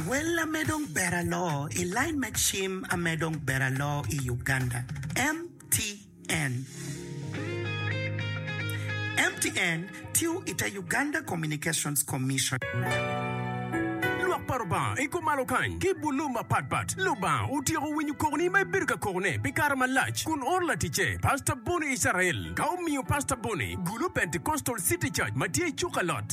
Wel ame dong ber aloo i lain me cim ame dong ber aloo i Uganda, MTN. MTN tiyo i te Uganda Communications Commission. Lwak pa Lubanga i kom malo kany ki bulu mapatpat. Lubanga otyeko winyo kokoni ma ibedo ka kokone pi kare malac kun oro laticce, Pastor Bonnie Israel, ka omiyo Pastor Bonnie gulu Pentecostal City Church ma tye i Cukalot.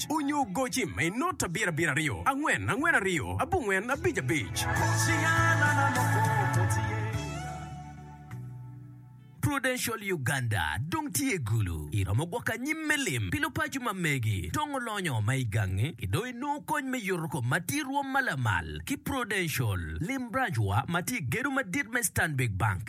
abic, onyo goci ma inot abiro abiro aryo, angwen angwen aryo, abongwen abic abic. Prudential Uganda dong tye gulu. Iromo gwoko anyim me lim pi lupaco ma megi dong olonyo ma i gangi ki dong inongo kony me yuto kom ma tye rwom ma lamal ki Prudential. Lim branch wa ma tye i gedo madit me Stanbic Bank.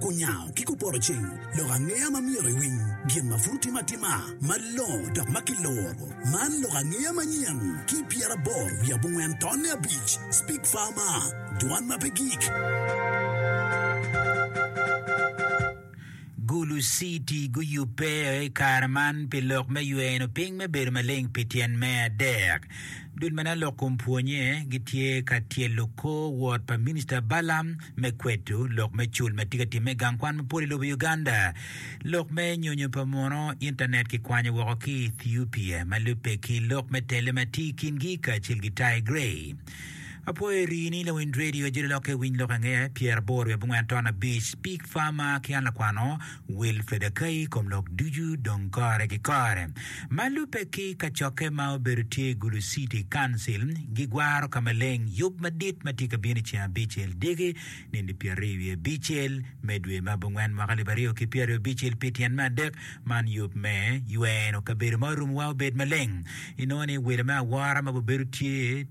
Kunyango ki kuporoceng lok angeya ma myero iwiny gin ma pud otime atima malongo dok ma kiloro. Man lok angeya manyen ki pyeraboro wiye abongwen tonne abic, Speak Farmer, Dwan ma pe gik. Gulu City guyubbe i kare man pi lok me yweno piny me bedo maleng pi tyen me adek. Dul ma nen lok kom pwonye gitye ka tyelo kor wot pa Minista Balaam me kwedo lok me cul ma tye ka timme i gang kwan mapol i lobo Uganda, lok me nyonyo pa muno, intanet kikwanyo woko ki i Ethiopia ma lubbe ki lok me tele ma tye i kingi kacel ki Tigray. Apwoyo rii ni lawiny radio ajoli lokke winy lok angeya, pyera boro i abongwen ton abic, Pig Farmer ki an lakwano, Wil Fedakai i kom lok ducu dong kore ki kore. Ma lubbe ki kacokke ma obedo tye i Gulu City Council, gigwaro ka maleng yub madit ma tye ka bino i ceng abicel dyegi, nindi pyeraryo wiye abicel, me dwe ma abongwen mwaka alip aryo ki pyeraryo abicel pi tyen me adek. Man yub me yweno kabedo ma orumowa obed maleng. Inongo ni welo me awora ma gubedo tye,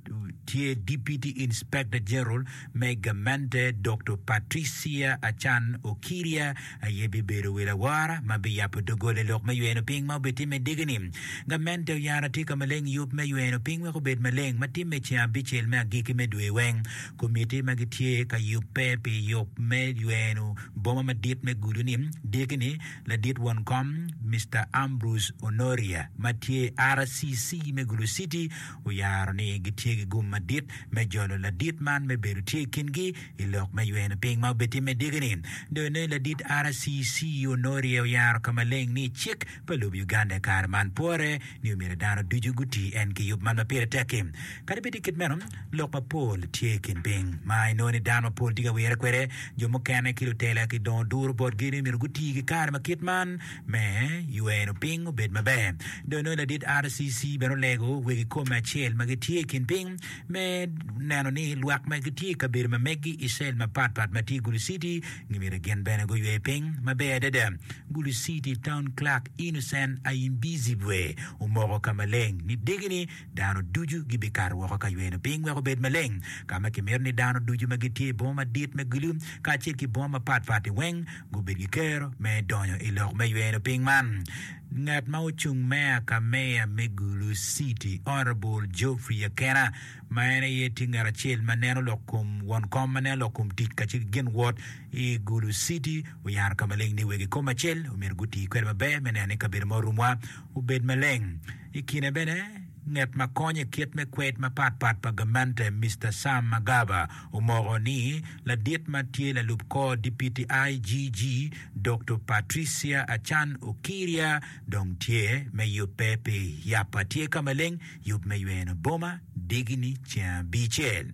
tye Deputy Inspector General, me gamente Dokto Patricia Achan Okirya aye bibedo wi lawora ma biyabo doggola i lok me yweno piny ma obitimme i dyegi-ni. Gamente oyaro atika maleng yub me yweno piny wek obed maleng ma timme i ceng abicel me agikki me dwe weng. Komitti ma gitye ka yubbe pi yub me yweno boma madit me Gulu-ni dyegi-ni ladit won kom Mister Ambrose Onoria ma tye i RCC me Gulu City, oyaro ni gitye ki gum madit me jolo ladit man me bedo tye i kingi i lok me ywene piny ma obitimme dyegi-ni. Dong ne ladit RCC Onorie oyaro ka maleng ni cik pa lobo Uganda i kare man pore ni omyero dano ducu guti en ki yub man ma pire tek-ki. Kadi bed tye kit meno, lok mapol tye i kin piny ma inongo ni dano mapol tye ka wire kwede. Jo mukene ki lutela gidongo duro botgi ni omyero guti ki kare ma kit man. me ywero piny obed maber. Dong nongo ladit RCC bene olego wegi kome acel ma gitye i kin piny me neno ni lwak ma gitye i kabedo ma megi i cell mapat pat ma tye i Gulu City gimyero gin bene guywe piny maber adada. Gulu City Town Clerk Innocent Ayimbizibwe omoko ka maleng ni degini dano ducu gibikato woko ka yweno piny wek obed maleng, ka ma kimito ni dano ducu ma gitye i boma madit me gulu kacel ki boma mapatpat-ti weng gubed ki kero me donyo i lok me yweno piny man. Ngat ma ocung meya ka meya me Gulu City, Honourable Geoffrey Akena, ma en aye tye ngat acel ma neno lok kom won kom ma neno lok kom tic kacel ki gin wot i Gulu City oyaro ka maleng ni wegi kom acel omyero guti kwede maber me neno ni kabedo ma orumwa obed maleng. I kine bene, nget ma konyo i kit me kwed mapat pat pa gamente, Mister Sam Magaba, omoko ni ladit ma tye lalub kor dipiti IGG, Dokto Patricia Achan Okiria dong tye me yubbe pi yap atye ka maleng, yub me yweno boma, digini ceng abicel.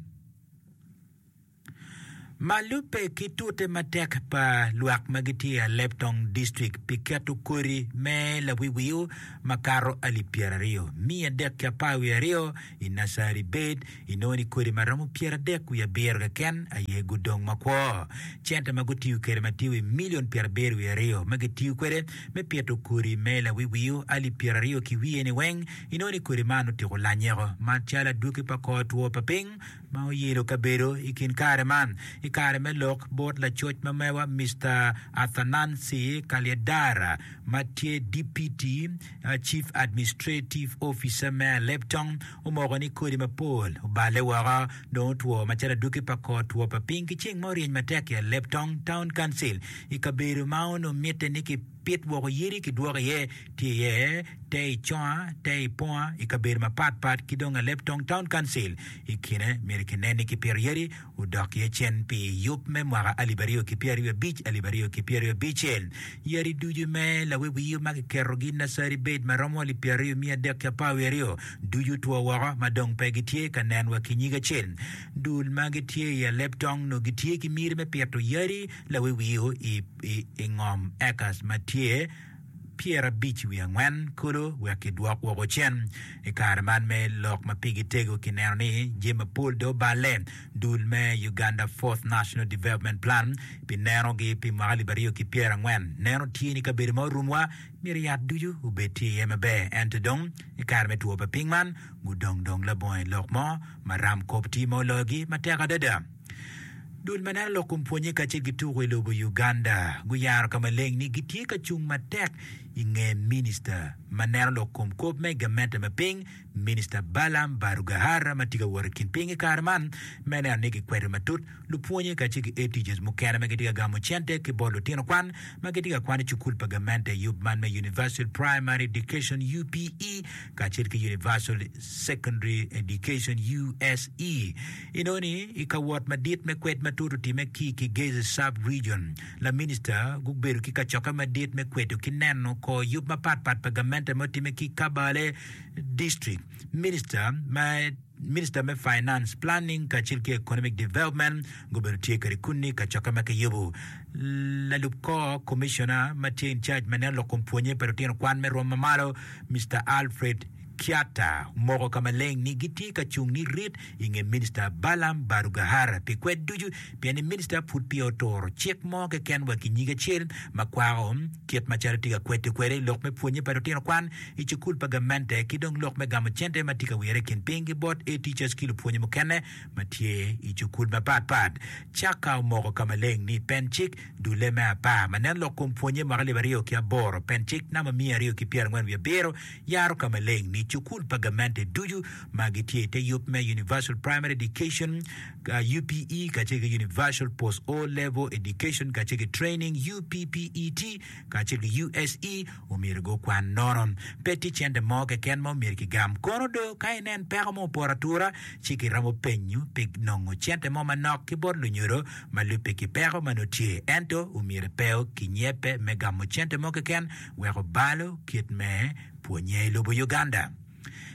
Ma lubbe ki tute matek pa lwak ma gitye i Alep Tong District pi keto kodi me lawiwio makato alip pyeraryo, miya adek ki apar wiye aryo i nacari bed inongo ni kodi ma romo pyeradek wiye abiro keken aye gudong makwo. Cente ma gutiyo kwede ma tye wi milion pyerabiro wiye aryo ma gitiyo kwede me pito kodi me lawiwio alip pyeraryo ki wiye-ni weng inongo ni kodi man otiko lanyeko macalo adwoki pa kor two pa piny ma oyelo kabedo i kin kare man i kare me lok bot lacoc ma mewa Mister Athanansi Kalyedara ma tye Dipiti Cif Administrativ Ofica me Aleptong omoko ni kodi mapol oballe woko dong otwo macalo aduki pa kor two pa piny ki ceng ma oryeny matek i Aleptong Town Council i kabedo ma onongo mitte ni ki Pit woko yadi ki dwoko iye tye iye te i conga, te i ponga i kabedo mapat pat ki dong aleb tong town council i kine myero ki nen ni ki pito yadi odok iye cen pi yub me mwaka alip aryo ki pyeraryo abic alip aryo ki pyeraryo abicel yadi ducu me lawe wiyo ma ki keto gi naceri bed ma romo alip pyeraryo miya adek ki apar wiye aryo ducu two woko ma dong pe gi tye ka nen wa ki nyige acel dul ma gi tye i aleb tong nongo gi tye ki miti me pito yadi Lawi wiu i ngom acres ma tye pyerabic wiye angwen kulu wek kidwok woko cen. I kare man me lok ma pigi tego, kineno ni jami mapol dong oballe. Dul me Uganda Fourth National Development Plan pi nenogi pi mwaka alip aryo ki pyerangwen neno tye ni kabedo ma orumwa myero yat ducu obed tye iye maber ento dong i kare me two pa piny man gudong dong labongo i lok mo ma ram kop tye ma oloyogi matek adada. Dul ma neno lok kun pwonye kacel ki tuko i lobo Uganda guyaro ka maleng ni gitye ka cung matek i nge Minista ma neno lok kom kop me gamente me piny, Minista Balaam Barugahara ma tye ka wot i kin piny i kare man me neno ni gikwedo matut lupwonye kacel ki aid teachers mukene ma gitye ka gamo cente ki bot lutino kwan ma gitye ka kwan i cukul pa gamente i yub man me Universal Primary Education, UPE, kacel ki Universal Secondary Education, USE. Enoni, i ka wot madit me kwed matut otimme ki i Kigezi Sub-Region, laminista gubedo ki kacokke madit me kwedo ki neno kor yub mapatpat pa gamente ma otimme ki i Kabale District. Minista ma Minista me Finance, Planning kacel ki Economic Development gubedo tye kede kunni i kacokke ma kiyubo. Lalub kor Commissioner ma tye in charge ma neno lok kom pwonye pa lutino kwan me rwom mamalo, Mister Alfred Kiatta omoko ka maleng ni gitye ka cung ni rit i nge Minista Balaam Barugahara pi kwed ducu pien ni Minista pud peya oturo cik mo keken wa ki nyig acel ma kwako kit macalo tye ka kwedde kwede lok me pwonye pa lutino kwan i cukul pa gamente ki dong lok me gamo cente ma tye ka wire i kin piny ki bot A teachers ki lupwonye mukene ma tye i cukul mapat pat. Chaka omoko ka maleng ni pen cik dulle me apar ma neno lok kom pwonye mwaka alip aryo ki aboro, pen cik namba miya aryo ki pyerangwen wiye abiro, Yaro ka maleng ni cukul pa gamente ducu ma gitye i te yub me Universal Primary Education, UPE, kacel ki Universal Post O-Level Education kacel ki Training, UPPET, kacel ki USE omyero gukwan nono. Pe tye cente mo keken ma omyero kigam. Kono do, ka inen peko mo opoto atura, ci kiromo penyo pi nongo cente mo manok ki bot lunyodo ma lubbe ki peko ma nongo tye. Ento, omyero pe okinyebbe me gamo cente mo keken wek obalo kit me pwonye i lobo Uganda.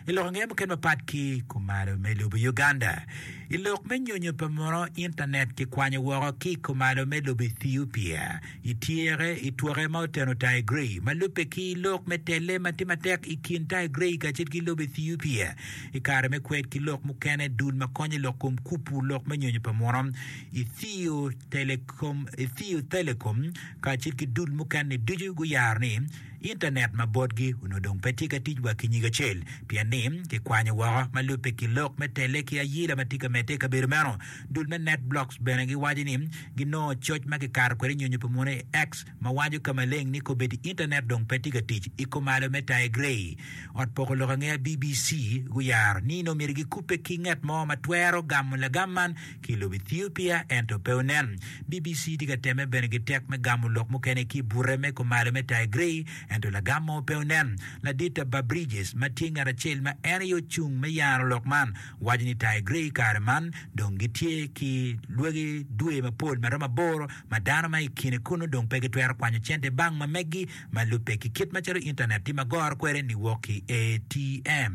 I lok ange mukene mapat ki kumalo me lobo Uganda? I lok me nyonyo pa muno intanet kikwanyo woko ki i kumalo me lobo Ethiopia i tyeke i twoke ma oteno Tigray ma lubbe ki lok me telle ma tye matek i kin Tigray kacel ki lobo Ethiopia i kare me kwed ki lok mukene dul ma konyo i lok kom kupu lok me nyonyo pa muno Ethiopia Telecom, Ethio Telecom kacel ki dul mukene ducu guyaro ni Intanet ma botgi onongo dong pe tye ka tic wa ki nyig acel pien ni kikwanyo woko ma lubbe ki lok me tele ki ayila ma tye ka medde i kabedo meno. Dul me NetBlocks bene giwaco ni ginongo coc ma kikato kwede nyonyo pa munu i X ma wanyo ka maleng ni kobedi Intanet dong pe tye ka tic. I kumalo me Taye Gray, Ot Poko Lok Angeya BBC guyaro ni nongo myero gikubbe ki ngat mo ma twero gamo lagam man ki i lobo Ethiopia ento pe onen. BBC tye ka temme bene ki tek me gamo lok mukene ki i bute me kumalo me Taye Gray ento lagam mo pe onen. Ladita Barb Bridges ma tye ngat acel ma en aye ocung me yaro lok man waco ni Taye Gray kare man dong gitye ki lwagi dwe mapol ma romo aboro ma dano ma i kine kunnu dong pe gitwero kwanyo cente bang ma meggi ma lubbe ki kit macalo Intanet tye ma goro kwede niwok ki ATM.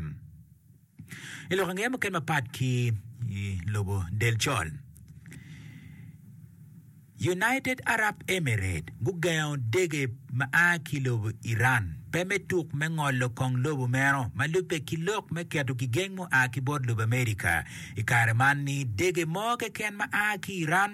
I lok angeya mukene mapat ki i lobo del col, United Arab Emirates gugengo dege ma a ki lobo Iran pe me tuk me ngolo kong lobo meno ma lubbe ki lok me keto gigeng mua ki bot lobo America i kare man ni dege mo keken ma a ki Iran